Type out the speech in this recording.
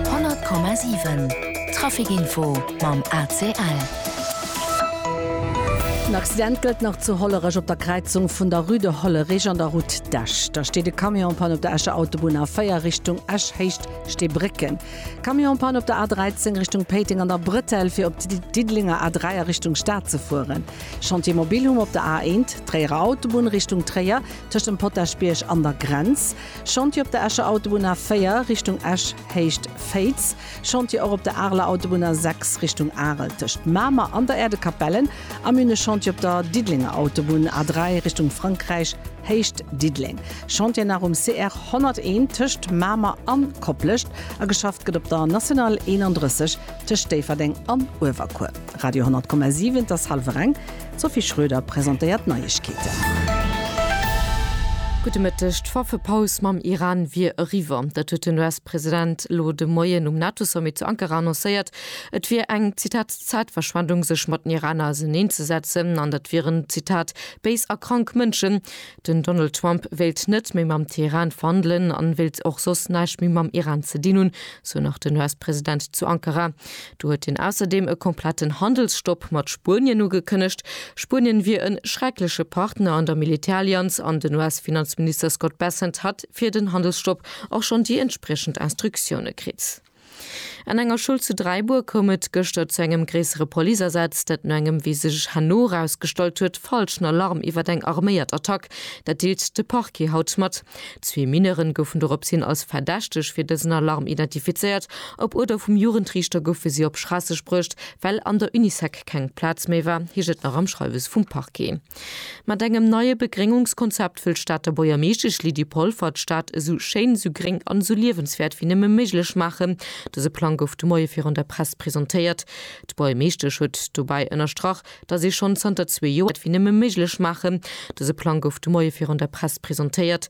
100,7 Trafic-Info mam ACL. Den Accident gëllt nach zu Hollerech op der Kräizung vun der Rue de Hollerich an der Route d'Esch. Da steet e Camion en panne op der Escher Autobunn A4 Richtung Esch héicht Steebrécken. Camion en panne op der A13 Richtung Péiteng an der Brëtell fir op d'Diddelenger A3 a Richtung Stad ze fueren. Chantier Mobilhome op der A1 Tréierer Autobunn Richtung Tréier tëscht dem Potaschbierg an der Grenz. Chantier op der Escher Autobunn A 4, Richtung Esch, Héicht Féiz. Chantier och op der Areler Autobunn A 6, Richtung Arel, tëscht Mamer an der Erdekapellen. Am Min e Chantier op der Diddelenger Autobunn A 3, Richtung Frankräich, Héicht Diddeleng. Chantier nach um CR 101, tëscht Mamer a Koplescht. A geschafft gëtt op der National 31, tëscht Déifferdeng an Uewerkuer. Radio 100,7 Et ass hallwer eng. D'Sophie Schroeder presentéiert d'Neiegkeeten. Gudde Mëtteg. D'Waffepaus mam Iran wier eriwwer. Dat huet den US-President elo de Moien um NATO-Sommet zu Ankara annoncéiert. Et wier eng, Zitat, Zäitverschwendung sech mat den Iraner auseneen ze setzen an dat wieren, Zitat, béis a krank Mënschen. Den Donald Trump wéilt net méi mam Teheran verhandelen an wéilt och soss näischt méi mam Iran ze dinn hunn, sou nach den US-President zu Ankara. Do huet hien ausserdeem e kompletten Handelsstopp mat Spuenien ugekënnegt. Spuenien wier e schreckleche Partner an der Militärallianz an den US-Finanzminister Scott Bessent hat fir den Handelsstopp och schonn déi entspriechend Instruktioune kritt. An enger Schoul zu Dräibuer koum et gëschter zu engem gréissere Policeasaz, dat no engem, wéi sech herno erausgestallt huet, falschen Alarm iwwer eng arméiert Attack. Dat deelt de Parquet haut mat. Zwee Mineuren goufen doropshin als Verdächteg fir dësen Alarm identifizéiert. Op Uerder vum Jugendriichter goufe si op Schraasseg bruecht, well an der Unisec keng Plaz méi war, heescht et nach am Schreiwes vum Parquet. Mat engem neie Begréngungskonzept wëll d'Stater Buergermeeschtesch Lydie Polfer d'Stad esou schéin, esou gréng an esou liewenswäert wéi nëmme méiglech maachen. Dëse Plang gouf de Moie virun der Press presentéiert. D'Buergermeeschtesch huet dobäi ënnerstrach, datt ee schonn zanter zwee Joer wéi nëmme méiglech maachen. Dëse Plang gouf de Moie virun der Press presentéiert.